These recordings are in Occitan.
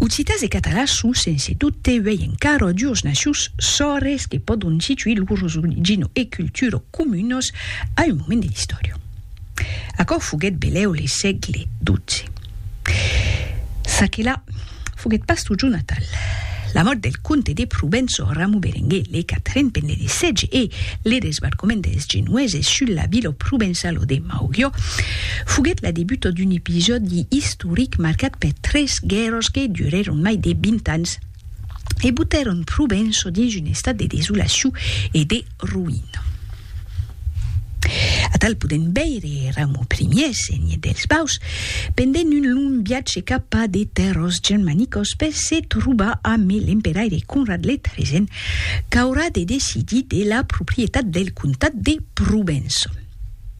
Occitas e catalans son sense dubte uèi encara duos nacius sòrres que pòdon situir lors origina e cultura comunas a un moment de l'istòria. Aquò foguèt belèu le sègle xii. Çaquelà foguèt pas totjorn natal. La mòrt del comte de Provença Ramu Berenguer le Quatren pendent de sètge e le desbarcament dels Genueses sus la vila provençala de Maugiò foguèt la debuta d'un episòdi istoric istoric marcat per tres guèrras que durèron mai de 20 ans e botèron Provenço dins un estat de desolacion e de roïna. Atal podèm veire Raumur Ier, senhe dels Baus, pendent un long viatge cap a de tèrras germanicas per se trobar amb l'emperaire Conrad le Tresen qu'aurà de decidir de la proprietat del comtat de Provenço.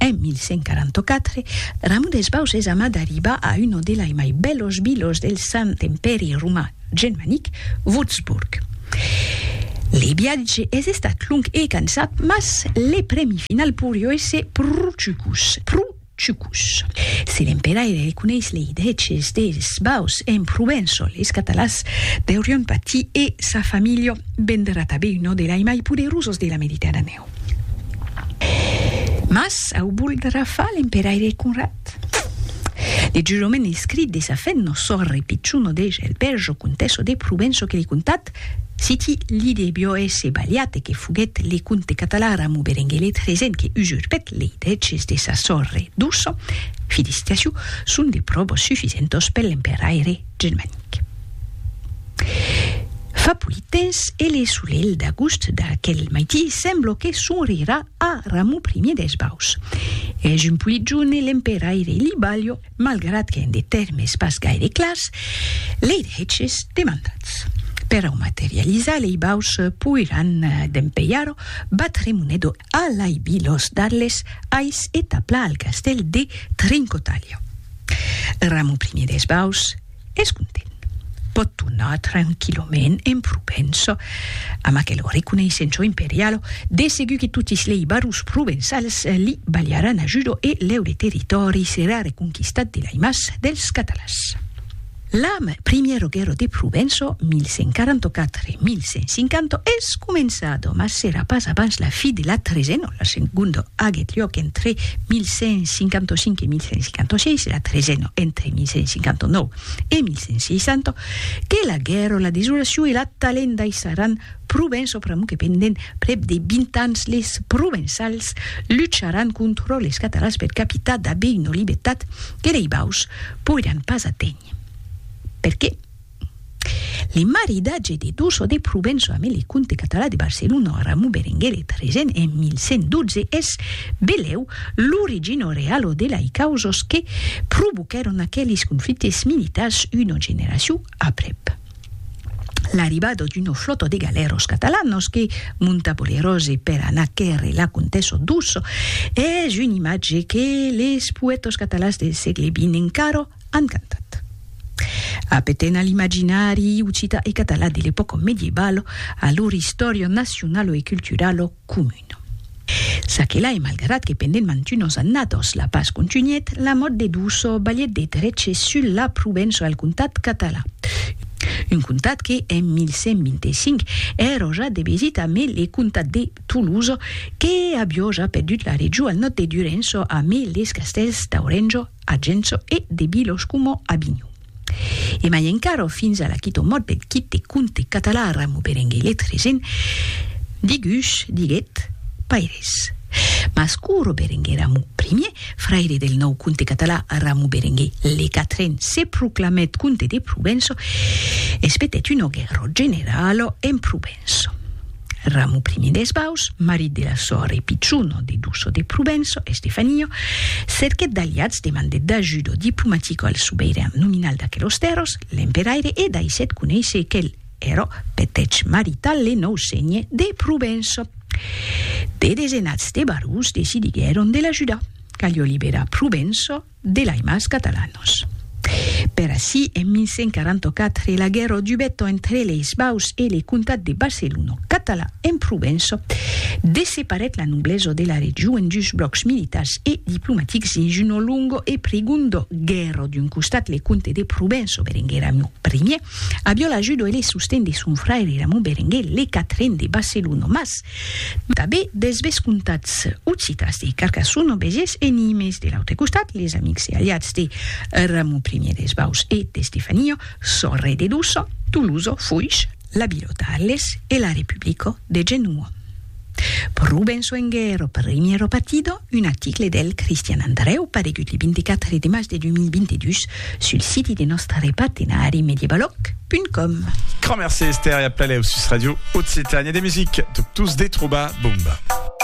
En 1144, Ramon des Baus es amat d'arribar a uno delai mai bèlos vilos del Sant Empèri Roman Germanic, Wurzburg. Le viatge es estat long e cansat, mas le prèmi final poirió èsser pro chucus, pro Chucus. Si l'emperaire reconeis lei dreches deis baus en Provenço, leis Catalans deurion patir e sa familha vendrà tabé un nòde lai mai poderosos de la Mediterranèu. Mas au voldrà far l'emperaire Conrad? De jurament escrit de sa fèth nos sòrre Pichuno de Gelberjo, Contesso de Provenço que li contat Citi li de Bioèse Baliate que foguèt le comte catalan Ramon Berenguelet Resen que usurpèt lei drèches de sa sòrre doço, fidis Tiaciu, son de pròbos sufisentos per l'emperaiire germanic. Fa polit temps e le solelh d'agost d'aquel maití semblo que sonrirà a Ramon Primier d'Esbaus. Es un polit jorn e l'emperaiire Libalio, malgrat qu'en de tèrmes pas gaire clars, lei dreches demandats per au materializar lei baus poiràn dempelhar-o batre Monedo a l'aibi los d'Arles ais e taplar al castèl de Trincotalha. Ramon Primier des Baus, es content. Pòt tornar tranquillament en Provença, amb aquelo reconeissenço imperialo, de segur que totis lei barons provençals li balharàn ajudo e leure territòri serà reconquistat de lei mas dels Catalans. L'am Primiero Guerro de Provenço, 1144-1150, es començado, mas serà pas abans la fi de la Tresenon. La segonda aguèt luòc entre 1155 e 1156, la tresena entre 1159 e 1160, que la guèrra, la desolacion e la talenda aissaràn Provença pr'amor que pendent prèp de 20 ans les Provençals lucharàn contra les Catalans per capitar dabé una libertat que lei baus poiràn pas aténher. Perqué? Le maridatge de Duso de Provenço ame le comte català de Barcelona Ramon Berenguer de Tresen en 1112 es, belèu, l'origino realo de lai causas que provoquèron aquelis conflictes militars una generacion aprèp l'arribada d'una flòta de galèros catalanas que monta bolerose per anar quèrre la comtessa Duso es un imatge que les poètas catalans del sègle xx encara Encantat. Apeten a l'imaginari occitan e catalan de l'epòca medievalo, a lor istòria nacionalo e culturalo comuna. Ça que la e malgrat que pendent mantunos annados la pas contunhèt, la mòt de Duso balhèt de dreche sul la Provença e al comtat catalan. Un comtat que, en 1125, èra ja de vesita amé le comtat de Tolosa, que avió ja perdut la region al nòd de Durenço amé les castèls d'Aurenço, a Gencho e de Bilos coma a Binho. E mai encara, fins a l'aquí ton mot deth quite de conte català Ramo Berenguer Letregen, digus, diguet, Paires. Mas Curo Berenguer Ramo Primier, fraire del nòu conte català Ramo Berenguer le Quatren se proclamèt conte de Provenço, espetèt un ògue ròt general en Provença. Provenço. Ramu primi des Baus, marit de la sòr e pichon de Duço de Provenço, Estefanio, cerquèt d'aliats, demandèt d'ajudo diplomatico al subeiran nominal d'aquelos tèrros, l'emperaire, e daissèt conéisser quel ero petèch marital le nòu sénhe de Provenço. De desenats de barons decidiguèron de l'ajudar. Calió liberar Provenço. de l'Aimas Catalanos. Per ací, en 1144, la guèrra dubèt entre leis Baus e le comtat de Barcelona, catalan en Provença, desseparèt la noblesa de la region en dus blòcs militars e diplomatics dins una longa e prigonda guèrra. D'un costat, le comte de Provença, Berenguer Ramon Ier, aviá l'ajuda e le sosten de son fraire Ramon Berenguer le Quatren de Barcelona, mas, Tanben dels vescomtats occitans de Carcassona, Béziers e Nimes. De l'autre costat, les amics e aliats de Ramon Ier des Baus e d'Estefania, Sorre de Doçan, Tolosa, Foix, la vila d'Arles e la Republica de Genoa. Pro ben soenguer o primièra partida, Un article del Cristian Andrèu paregut le 24 de mas de 2022 sul siti de nòstre partenari mediebaloc.com. Grand merci Esther e a plaleau sus Radio Occitània de music, tot tous de trobar Bomba.